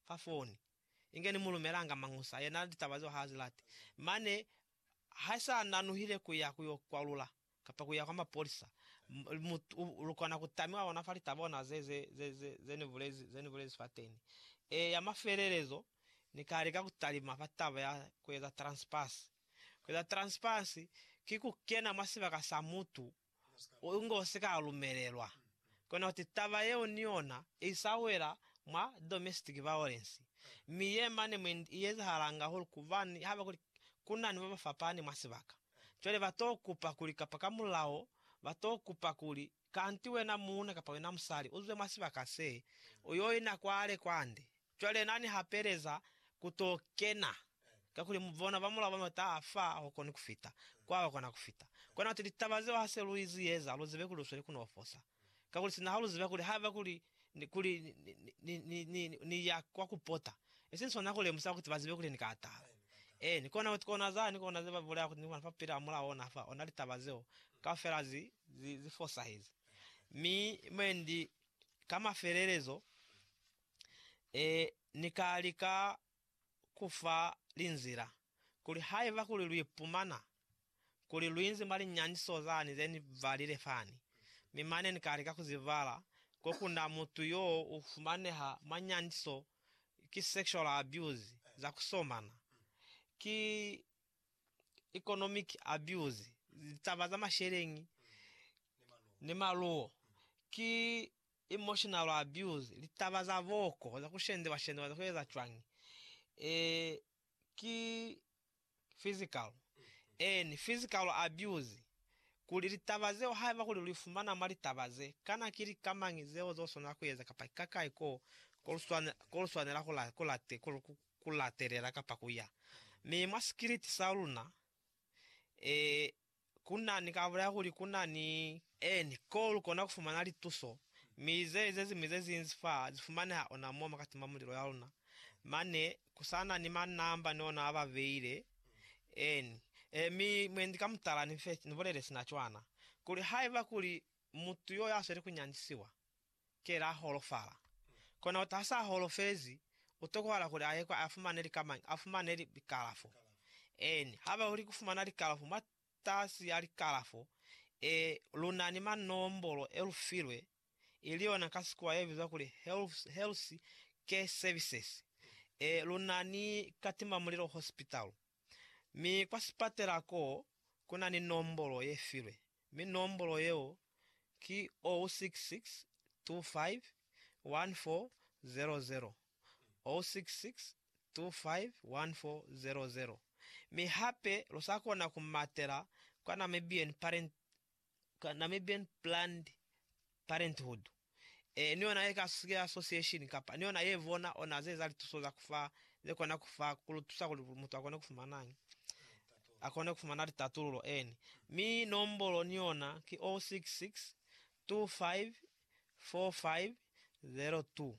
fa foni, inge ni mu lumelanga Mañusa, yena na litaba zeo ha zi lati. Mane ha sa nanuhile ku ya ku yo kwalula, kapa ku ya kwa mapolisa, mu, u, lu kona ku tamiwa ona fa litaba ona ze, ze, ze, ze, ze ni bulezi, ze ni bulezi fateni. E, ya mafelelezo, Ni ka lika ku talima fa taba ya ku eza transpass. Ku eza transpass ki ku kena mwa sibaka sa mutu. u ngo si ka lumelelwa. Kono kuti taba yeo ni yona i sa wela mwa domestic violence, mi ye mane mwe i ezahalanga hahulu kubani haba kuli ku na ni ba ba fapani mwa sibaka. Cwale ba t'o kupa kuli kapa ka mulao ba t'o kupa kuli, Kanti wena muuna kapa wena musali u zwe mwa sibaka se, u y'o ina kwale kwande, Cwale Na ni hapeleza ku to kena, kakuli mu bona ba mulao ba mata a fa a hokoni ku fita kwa ba kona ku fita. Kona kuti litaba zeo ha se lu izi eza, lu zibe kuli lu sweli ku no fosa. Kakuli sina ha lu ziba kuli haiba kuli, kuli ni, ni, ni, ni ya kwa ku pota, i si swana ku lemusa kuti ba zibe kuli ni ka atala. Eeni, kona kuti kona za, ni kona ze ba bulaya kuti ni kona fa kupila ba mulao ona fa, ona litaba zeo kaufela zi, zi, zi fosahezi. Mi mwendi ka mafelelezo, Ee, Ni ka lika ku fa linzila, kuli haiba kuli lu ipumana kuli lu inzi mwa linyaniso zani ze ni balile fani, mi mane ni ka lika ku zi bala, ko ku na mutu yo u fumaneha mwa nyaniso, ki sexual abuse, za ku somana, ki economic abuse, litaba za masheleñi ni maluwo, ki Emotional abuse, litaba za booko, za kushendewa-shendewa za kueza cwañi? Ee, ki physical. Eeni, physical abuse. Kuli, litaba zeo haiba kuli luifumana mwa litaba ze, kana ki lika mañi zeo zoswanela kueza kapa ki kakai ko koluswanela kulatelela kapa kuya? Mi mwa sikiliti saluna, ee, Ku na ni ka bulaya kuli ku na ni. Eni, koo lu kona ku fumana lituso, mi ze, ze ziñwi ze zinzi fa zi fumaneha ona mo makati ma mulilo ya luna. Mane, ku sa na ni ma namba ni ona a ba beile. Eni. E, mi mwendi ka mutala ni fe, ni bulele sina cwana, kuli haiba kuli mutu yo ya sweli ku nyandisiwa, Ki la holofala. Kona uta hasa holofezi, utokohala kuli aye kwa afumane lika mañi? Afumane likalafo. Eeni, haba uli kufumana likalafo mwa tasi ya likalafo, e, luna ni manombolo e lufilwe, ili yona ka Sikuwa yebizwa kuli Health, Health Care Services, e, luna ni Katimamulilo Hospital. Mi kwa sipatela ko ku na ni nombolo ye filwe, mi nombolo yeo ki 066251400, 066251400. Mi hape lu sa kona ku matela kwa Namibian Parent ka Namibian Planned Parenthood, e, ni yona ye ka Sukela Association, kapa ni yona ye bona ona ze eza lituso za ku fa, ze kona ku fa, ku lu tusa kuli mutu akone ku fumanañi? Akone ku fumana litatululo, eni. Mi nombolo ni yona ki 066 25 45 02.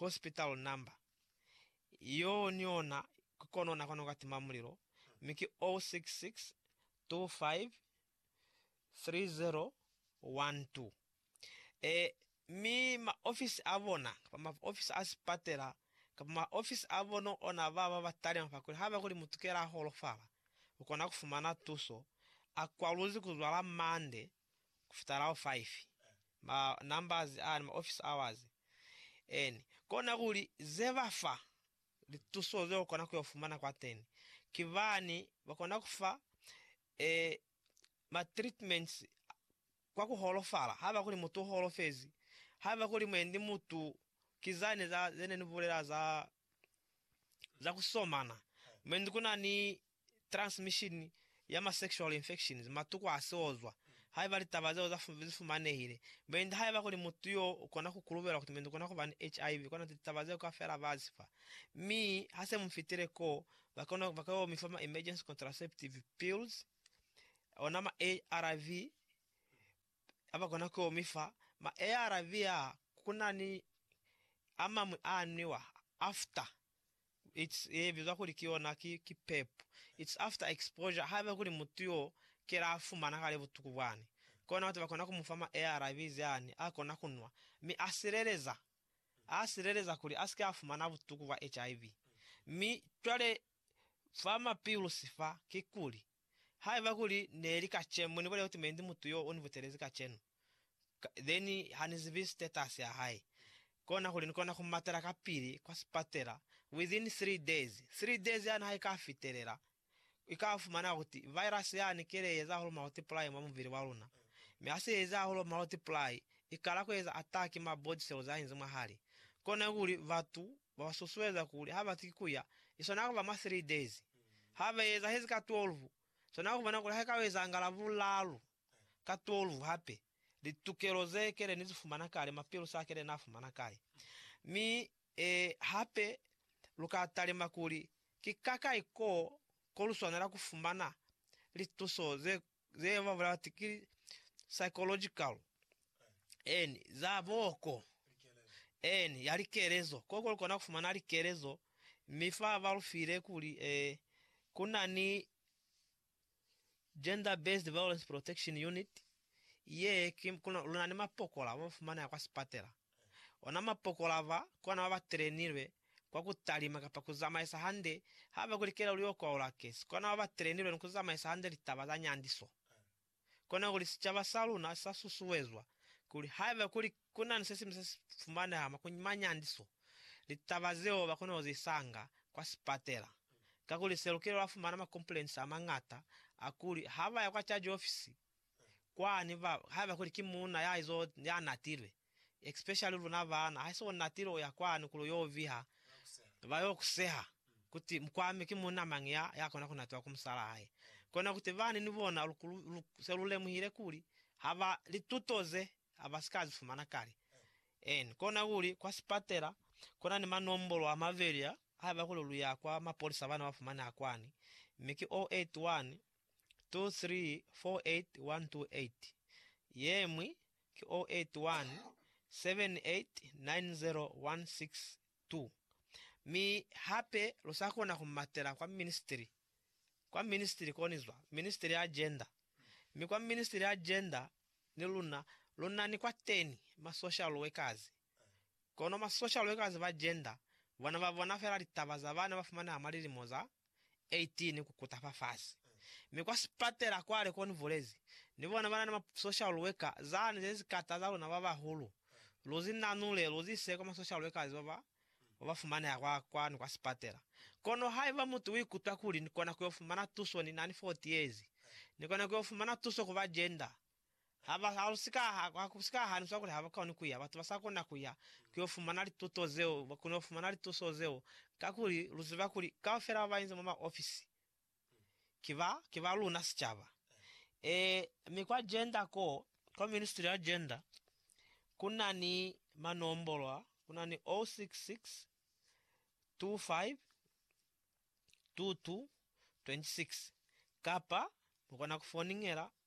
hospital number, yoo ni ona ki kono na kona ku ka tima mulilo, mi ki 066253012. Ee, mi ma ofisi a bona, kapa ma ofisi a sipatela, kapa ma ofisi a bona ona ba ba ba talima fa kuli haba kuli mutu kela a holofala, u kona ku fumana tuso, a kwaluzi ku zwala Monday, kufitalaho 5 ma numbers ani ma office hours and kona kuli ze ba fa lituso ze ukona kuyo fumana kwateni ki bani ba kona kufa e ma treatments kwa ku holofala haba kuli mutu u holofezi haba kuli mwendi mutu ki zani za zene ni bulela za za kusomana mwendi kuna ni transmission ya ma sexual infections, matuku a siozwa, haiba litaba zeo za zi fumanehile. Mwendi haiba kuli mutu yo ukona ku kulubelwa kuti mwendi ukona kuba ni HIV, kona kuti litaba zeo kaufela ba zi fa. Mi, ha se mu fitile koo, ba kona, ba ka yo mi fa ma emergency contraceptive pills, ona ma ARV, a ba kona ku yo mi fa. Ma ARV aa, ku na ni a mañwi a nwiwa after It's ye bizwa kuli ki yona ki, ki pep. It's after exposure, haiba kuli mutu yo kela a fumana kale butuku bwani, kona kuti bakona ku mufa ma ARVs ani a kona ku nwa, mi a sileleza, a sileleza kuli a sike a fumana butuku bwa HIV. Mi cwale fa ma pills fa, kikuli Haiba kuli neli kacenu moni bulela kuti mendi mutu yo uni butelezi kacenu ka then hani zibi status ya hae kona kuli ni kona ku matela ka pili kwa sipatela within three days three days yani ha ika fitelela ika fumana kuti virus yani ke le eza hulu multiply mwa mubili wa luna mi ha se eza hulu multiply ikala ku eza attack ma body cells a inzi mwa hali kona kuli batu ba ba susueza kuli ha ba si ki ku ya, i swana ku ba mwa three days. Ha ba eza hezi ka twelve, swana ku bona kuli ha i ka eza nga Lavulalu ka twelve hape, litukelo ze kele ni zi fumana kale, mapilusi a kele na fumana kale. Mi, eh, hape lu ka talima kuli ki kakai koo ko lu swanela ku fumana lituso ze ze ba bulala ti ki psychological en za boko en ya likelezo ko ko kona kufumana likelezo mi fa ba lufile kuli eh, kuna ni gender based violence protection unit ye ki kuna luna ni mapokola ba fumana ya kwa sipatela Ona mapokola ba kona ba ba telenilwe kwa ku talima kapa ku zamaisa hande ha ba kulikela kuli oko au lake si kona ba ba telenilwe ni ku zamaisa hande litaba za nyandiso. Kona kuli sicaba sa luna si sa susuezwa kuli haiba kuli ku na ni se siñwi se si fumaneha mwa ku ma nyandiso, litaba zeo ba kona ku zi sanga kwa sipatela. Kakuli se lukile lwa fumana makompulensi a mañata a kuli ha ba ya kwa caji ofisi, kwani ba haiba kuli ki munna ya izo ya natilwe especially luna bana ha iso natile uya kwani kuli uyo viha ba yo kuseha kuti mkwami ki munna mangi ya ya kona kunatiwa ku musala hae kona kuti bani ni bona lu se lu lemuhile kuli haba lituto ze aba sika zi fumana kale en kona kuli kwa sipatela kuna ni manombolo a mabeli a haiba kuli lu ya kwa mapolisa bana ba fumaneha kwani mi ki 081 234818, ye ñwi ki 081 7890162. Mi hape lu sa kona ku matela kwa ministri, kwa ministri koni zwa Ministri ya Gender, mi kwa Ministri ya Gender ni luna lu na ni kwateni ma social workers. Kono ma social workers ba gender bona ba bona fela litaba za bana ba fumaneha mwa lilimo za 18 ku kuta fa fasi. Mi kwa sipatela kwale ko ni bulezi, ni bona ba na ni ma social worker zani ze si kata za luna ba bahulu. Lu zi nanule, lu zi ise kwa ma social workers ba ba ba ba fumaneha kwa kwani kwa sipatela. Kono haiba mutu u ikutwa kuli ni kona ku yo fumana tuso ni na ni 40 years, ni kona ku yo fumana tuso ku ba gender. Ha ba halusi ka ha, ha ku si ka haniswa kuli ha ba koni ku ya, batu ba sa kona ku ya ku yo fumana lituto zeo, ba kona ku fumana lituso zeo, kakuli lu ziba kuli kaufela ba ba inzi mwa maofisi ki ba, ki ba luna sicaba. Ee, mi kwa Gender ko, kwa ministry ya Gender, ku na ni manombolo a, ku na ni 066252226, kapa mu kona ku foningela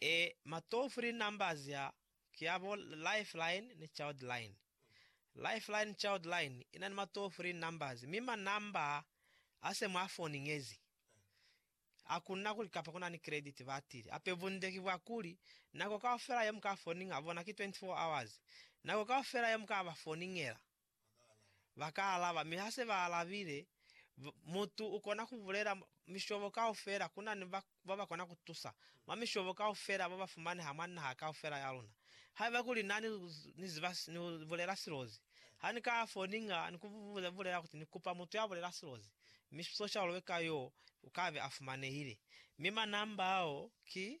E ma toll free numbers a ki a bo Lifeline ni Childline. Lifeline Childline i na ni ma toll free numbers mi ma number a se mwa foni ngezi. Ha ku na kuli kapa ku na ni credit batili hape bunde ki bwa kuli nako kaufela ye mu ka foniña bona ki 24 hours. Nako kaufela ye mu ka ba foniñela Ba ka alaba, mi ha se ba alabile, mutu u kona ku bulela mishobo kaufela. Ku na ni ba ba kona ku tusa mwa mishobo kaufela ba ba fumaneha mwa naha kaufela ya luna. Haiba kuli na ni ni ziba ni bulela silozi, ha ni ka ya fo ni nga ni ku bulela kuti ni kupa mutu ya bulela silozi, mi soshalulwe ka yo u ka be a fumanehile. Mi manamba ao ki